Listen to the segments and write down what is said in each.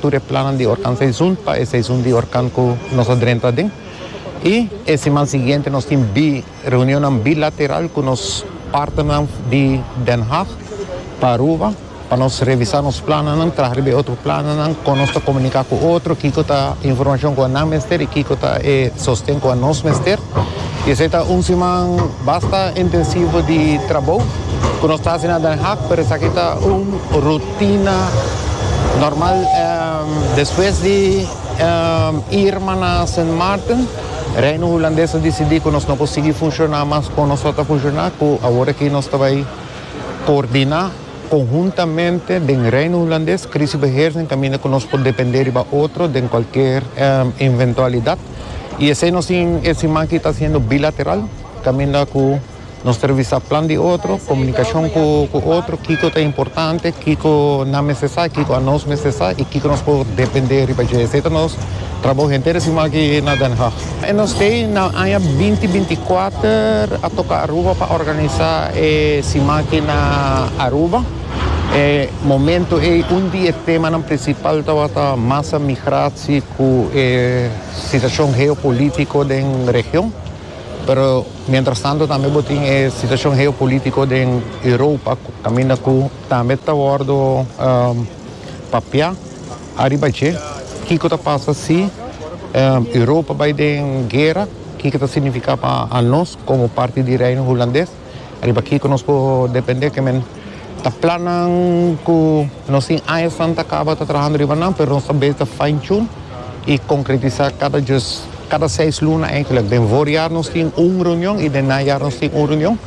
tur e plannan di orkan seizun pa e seizun di orkan ku nos a drenta aden. I e siman siguiente nos tin bi reunionnan bilateral ku nos partnernan di Den Haag pa Aruba pa nos revisa nos plannan, traha riba e otro plannan, kon nos ta komunika ku otro, kiko ta e informashon ku nan mester i kiko ta e sosten ku nos mester. I esei ta un siman basta intensivo di trabou ku nos ta hasi na Den Haag, pero esaki ta un rut. Tina, Normal despues di Irma na Sint Maarten, Reino Hulandes a disidí ku nos no por sigui funshoná mas kon nos lo ta funshoná, ku awor aki nos ta bai koordiná konhuntamente den Reino Hulandes krisibeheersing kaminda ku nos por dependé riba otro den kualker inventualidat. I esei nos tin e siman aki ta hasiendo bilateral kaminda ku. Nos ta revisa plan di otro, komunikashon ku otro, kiko ta importante, kiko nan mester sa, kiko anos mester sa i kiko nos por dependé riba dje. Esei ta nos trabou henter siman aki na Den Haag. Nos kei na aña binti binti kuater a toka Aruba pa organisá e siman aki na Aruba. E momentu ei un di e temanan prinsipal tabata masa migratie ku e situashon geopolítiko den region, pero. Mientras tanto tambe bo tin e situacion geopolitico den Europa caminda cu tambe ta wordo papia ariba dje. Kico ta pasa si Europa bay den guera? Kico ta significa pa anos como parti di Reino Hulandes? Riba kico nos por depende? Ta plannan cu nos tin aña san ta caba ta trahando riba nan, pero nos ta bezi ta fine tune y concretisa cada djus, cada seis luna eigenlijk. Den voorjaar nos tin un reunion y den najaar nos tin un reunion.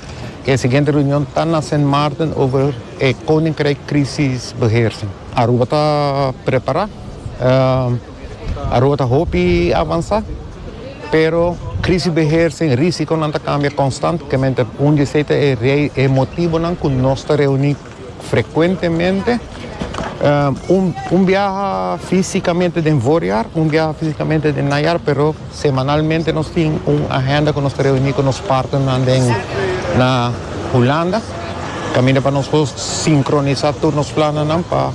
E siguiente reunion ta na Sint Maarten over e Koninkrijk Crisisbeheersing. Aruba ta prepara. Aruba ta hopi avansá, pero Krisisbeheersing i Risikonan ta kambia konstantemente. Un di esei ta e motibonan ku nos ta reuní frekuentemente, un biaha físikamente den voorjaar, un biaha físikamente den najaar, pero semanalmente nos tin un agenda ku nos ta reuní ku nos partnernan den na Hulanda kaminda pa nos por sinkronisá tur nos plannan pa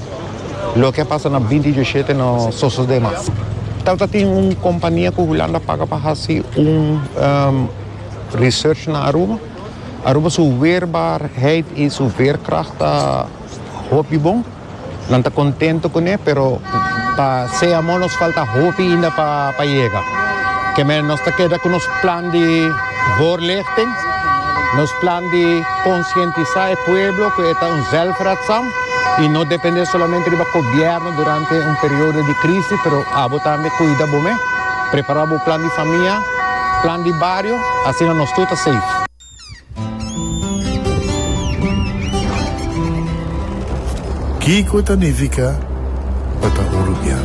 Loke a pasa na binti dioshete no sosode mas. Tal ta tin un kompania ku Hulanda paga pa hasi un research na Aruba. Aruba su weerbaarheid i su veerkragt ta hopi bon. Nan ta kontento kuné, pero pa sea amor nos falta hopi inda pa yega. Kemey nos ta keda ku nos plan di voorlichting, nos plan di konsientisá e pueblo ku e ta un zelfredzaam. I no dependé solamente riba kobièrnu durante un periodo di krisi, pero abo tambe kuida bo mes. Prepará bo plan di famia, plan di bario, asina nos tur ta safe. Kiko ta nifiká pa ta un rubian?